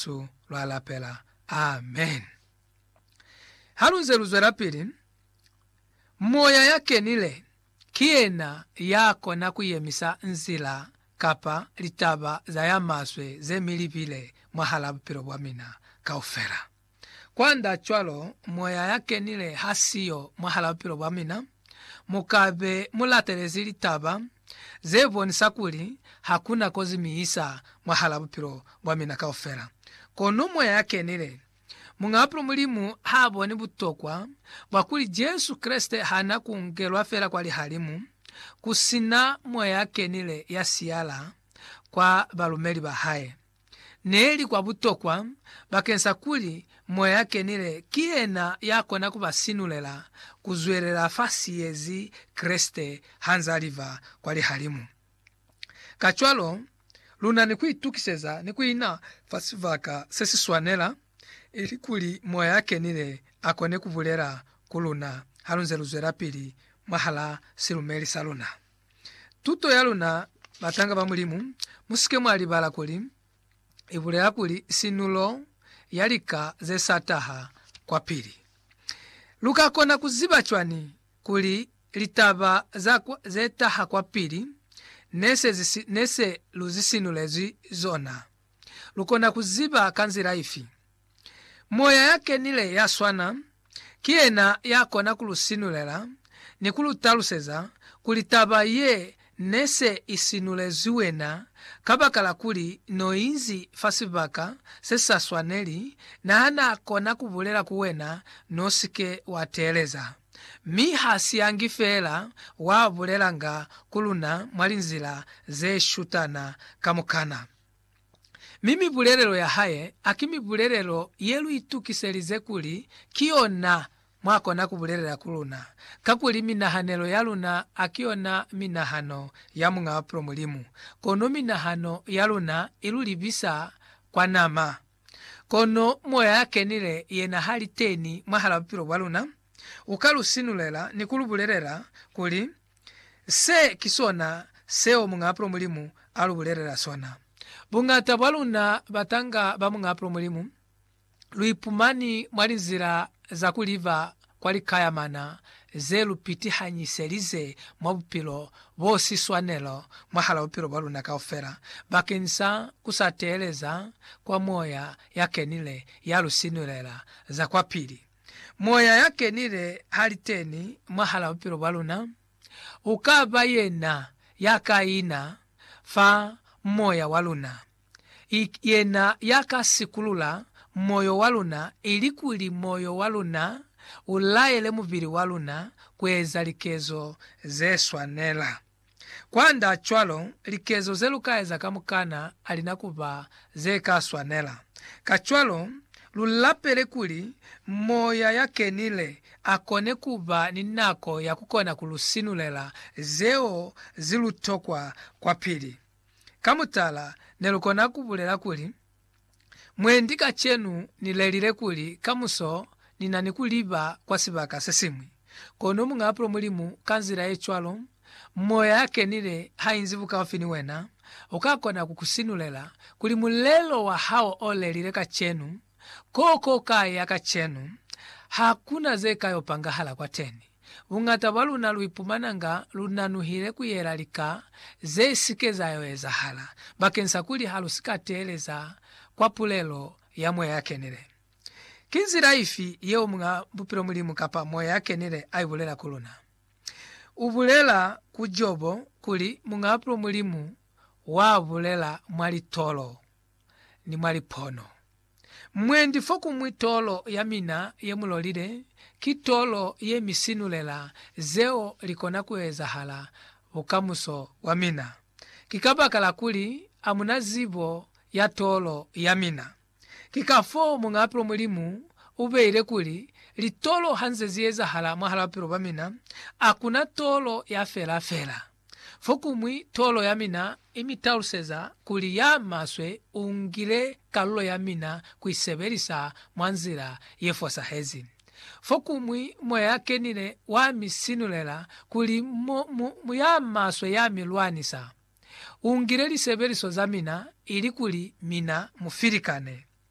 Jesu lwa lapela. Amen. Halunze luzwelapili, Moya ya Kenile ki yena ya kona ku yemisa nzila kapa litaba za ya maswe ze mi libile mwahala bupilo bwa mina kaufela. Kwanda cwalo, Moya ya Kenile ha siyo mwahala bupilo bwa mina, Mu ka be mu latelezi litaba ze bonisa kuli ha ku na kozi mi isa mwahal'a bupilo bwa mina kaufela. Kono Moya ya Kenile, Muñ'a Bupilo Mulimu ha boni butokwa bwa kuli Jesu Kreste ha na ku ngelwa fela kwa lihalimu ku si na Moya ya Kenile ya siyala kwa balumeli ba hae. ne li kwa butokwa bakeng sa kuli Moya ya Kenile ki yena ya kona ku ba sinulela ku zwelela fa siyezi Kreste ha nz'a liba kwa lihalimu. Kacwalo, lu na ni ku itukiseza ni ku ina fa sibaka se si swanela, ili kuli Moya ya Kenile a kone ku bulela ku luna ha lu nze lu zwelapili mwahal'a silumeli sa luna. Tuto ya luna, Batanga ba Mulimu, mu si ke mwa libala kuli, i bulela kuli sinulo ya lika ze sa taha kwapili. Lu ka kona ku ziba cwani kuli litaba za ze taha kwapili ne se lu zisinulezwi zona? Lu kona ku ziba ka nzila ifi? Moya ya kenile ya swana ki yena ya kona ku lu sinulela ni ku lu taluseza kuli taba ye ne se i sinulezwi wena kabakala kuli n'o inzi fa sibaka se sa swaneli, na ha n'a kona ku bulela ku wena n'o si ke wa teeleza. Mi ha si yangi feela, wa bulelanga ku luna mwa linzila ze shutana kamukana. Mi mibulelelo ya hae a ki mibulelelo ye lu itukiselize kuli ki yona mwa kona ku bulelela ku luna, kakuli minahanelo ya luna a ki yona minahano ya Muñ'a Bapilo Mulimu, kono minahano ya luna i lu libisa kwa nama. Kono Moya ya Kenile yena ha li teni mwahal'a bupilo bwa luna, u ka lu sinulela ni ku lu bulelela kuli, Se ki sona seo Muñaapulo Mulimu a lu bulelela sona. Buñata bwa luna batanga ba Muñaapulo Mulimu, lu ipumani mwa linzila za ku liba kwa likayamana ze lu pitihangiselize mwa bupilo bo si swanelo mwahal'a bupilo bwa luna kaufela, bakeng sa ku sa teeleza kwa Moya ya Kenile ya lu sinulela za kwapili. Moya ya Kenile ha li teni mwahal'a bupilo bwa luna, u ka ba yena ya ka ina fa moya wa luna. I yena ya ka sikulula moyo wa luna ilikuli moyo wa luna u laele mubili wa luna ku eza likezo ze swanela. Kwand'a cwalo, likezo ze lu ka eza kamukana ha li na ku ba ze ka swanela. Kacwalo, lu lapele kuli Moya ya Kenile a kone ku ba ni nako ya ku kona ku lu sinulela zeo ze lu tokwa kwapili. Ka mutala, ne lu kona ku bulela kuli, Mwendi kacenu ni lelile kuli kamuso ni na ni ku liba kwa sibaka se siñwi. Kono Muñaapulo Mulimu, ka nzila ye cwalo, Moya ya Kenile ha inzi bukaufi ni wena, u ka kona ku ku sinulela kuli mulelo wa hao o lelile kacenu, ko ko ka ya kacenu, ha ku na ze ka yo pangahala kwateni. Buñata bwa luna lu ipumananga lu nanuhile ku yela lika ze si ke za yo ezahala bakeng sa kuli ha lu si ka teeleza kwa pulelo ya Moya ya Kenile. Ki nzila ifi yeo Muñ'a Bupilo Mulimu kapa Moya ya Kenile a i bulela ku luna? U bulela ku Jobo kuli Muñ'a Bupilo Mulimu wa bulela mwa litolo ni mwa lipono. Mwendi fo ku mwi tolo ya mina ye mu lolile, ki tolo ye mi sinulela zeo li kona ku ezahala bukamuso bwa mina. Ki kabakala kuli a mu na zibo ya tolo ya mina. Ki kafoo Muñaapilo Mulimu u beile kuli, Litolo ha nze zi ezahala mwahal'a bupilo bwa mina, a ku na tolo ya fela fela. Fokuñwi, tolo ya mina i mi taluseza kuli ya maswe u ngile kalulo ya mina ku i sebelisa mwa nzila ye fosahezi. Fokuñwi, moya ya kenile wa mi sinulela kuli mu, mu, mu ya maswe ya mi lwanisa. U ngile lisebeliso za mina ilikuli mina mu filikane.